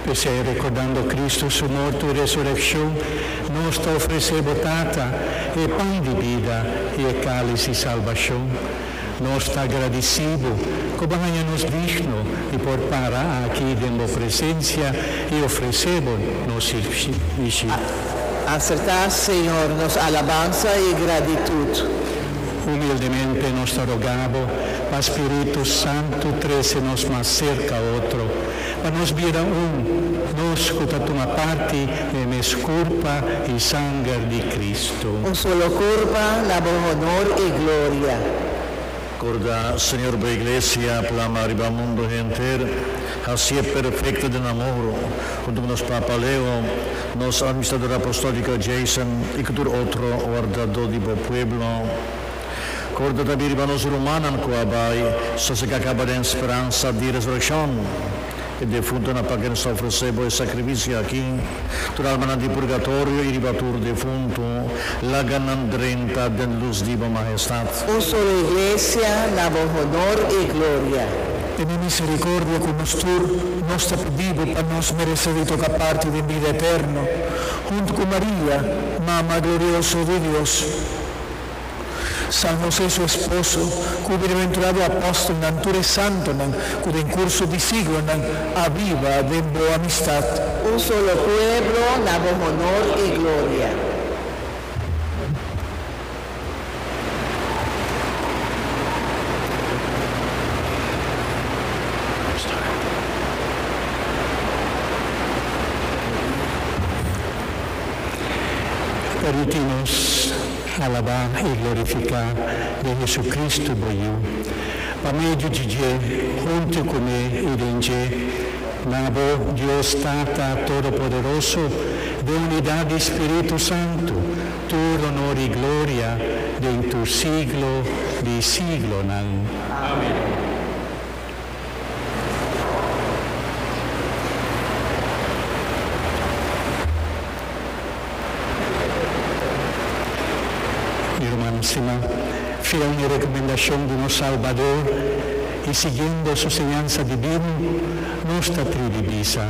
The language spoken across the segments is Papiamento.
P'esei, rekordando Kristu su mortu i resurekshon, nos ta ofresé bo, Tata, e pan di bida i e kális di salbashon. Nos ta agradisí bo ku bo haña nos digno di por para aki den bo presensia i ofresé bo nos sirbishi. Asertá, Señor, nos alabansa i gratitut. Humildemente nos ta rogá bo pa spiritu santu trese nos mas serka otro, pa nos bira un, nos ku ta tuma parti den e mes kurpa i sanger di Kristu. Un solo kurpa na bo honor i gloria. Korda, Señor, bo Iglesia plama riba mundu henter, hasié perfekto den amor, huntu ku nos Papa Leo, Nos Administrador Apostolico Jason y cu tur otro wardado di bo pueblo. Corda tambi riba nos rumannan cu a bai, zoals e ka caba den speransa di resurreccion. E defuntonan pa kenesa ofrece bo e sacrificio aki. Tur almanan di purgatorio y riba tur defunto, laga nan drenta den luz di bo Majestad. Un solo Iglesia na bo honor y gloria. Tene misericordia cu nos tur. Nos ta pidibo pa nos merece di toca parti den bida eterno hunto cu Maria, Mama glorioso di Dios, San Jose su esposo, cu bienaventurado apostelnan, tur e santonan cu den curso di siglonan a biba den bo amistad. Un solo pueblo na bo honor y gloria. Permití nos alabá i glorifiká di Jesucristu, bo Yu. Pa medio di dje, huntu cu me i den dje, na bo, Dios Tata Todopoderoso, den unidad di Spiritu Santu, Tur honor i gloria den tur siglo di siglonan. Amen. Mi rumannan siman, fiel na e rekomendashon di nos Salbador i siguiendo Su señansa divino, nos ta tribi bisa,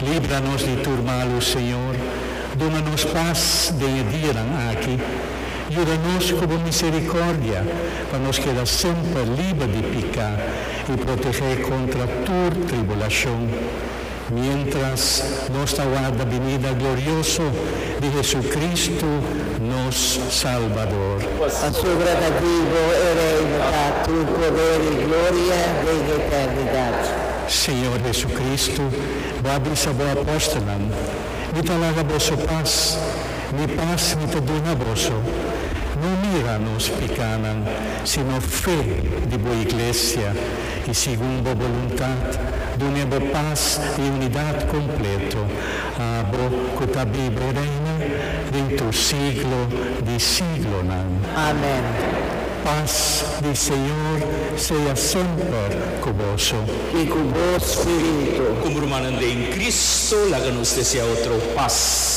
Libra nos di tur malu, Señor, duna nos pas den e dianan aki, yuda nos cu bo misericordia pa nos keda semper liber di pica y protegé contra tur tribulacion, mientras nos ta warda binida glorioso di Jesucristo, nos Salbador. Pasobra ta di bo e Reino ta tur poder y gloria den eternidad. Señor Jesucristo, Bo a bisa Bo apóstolnan, Mi ta laga boso pas, Mi pas Mi ta duna boso. No mira nos pikánan, sino fe di Bo Iglesia, i segun Bo boluntat, dun'é Bo pas i unidat kompleto, abo ku ta biba i reina den tur siglo di siglonan. Amén. Pas di Señor sea semper ku boso. I ku bo spiritu. Ku brumanan den Kristu, laga nos deseá otro pas.